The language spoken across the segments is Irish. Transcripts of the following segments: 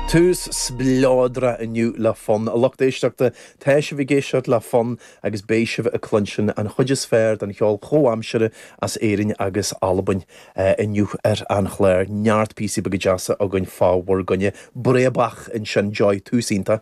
Tús spleodrach inniu le fonn. A lucht éisteachta, tá sibh ag éisteacht le fonn agus beidh sibh ag cluinstin an chuid is fearr den cheol chomhaimseartha as Éirinn agus Albain inniu ar an chlár. Neart píosaí beaga deasa againn fá bhur gcoinne. Breabach ansin daoibh, tús iontach.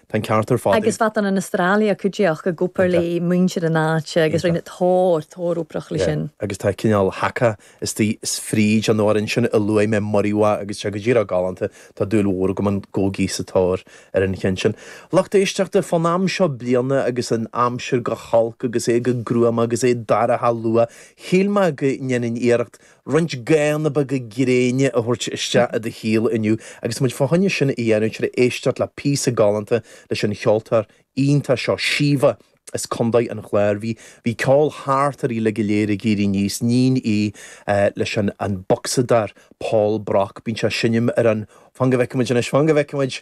Tá an ceart ar fad ag. Agus fatan an Astralia cuideacht i gcomhar le muintir na háite agus rinne tóir, tóir iomprach le sin. Agus tá cineál haka istigh 's fríd an amhrán sin a luaigh mé Muriwai agus tá go díreach galánta, tá dúil mhór agam ann Go Geese sa tóir ar an cheann sin. Lucht éisteachta, fán am seo bliana agus an aimsir go holc agus é go gruama agus é dorcha luath, shíl mé go ndéanfainn iarracht Roinnt gathanna beaga gréine a thabhairt isteach i do shaol inniu agus muid fá choinne sin a dhéanamh tar a éisteacht le píosa galánta leis an cheoltóir iontach seo Síomha as Co. an Chláir. Bhí bhí ceol thart uirthi uilig go léir ag éirí aníos iníon í leis an an bocsadóir Paul Brock. Bíonn sé ag seinm ar an Fan go bhfeicfimid anois, fan go bhfeicfimid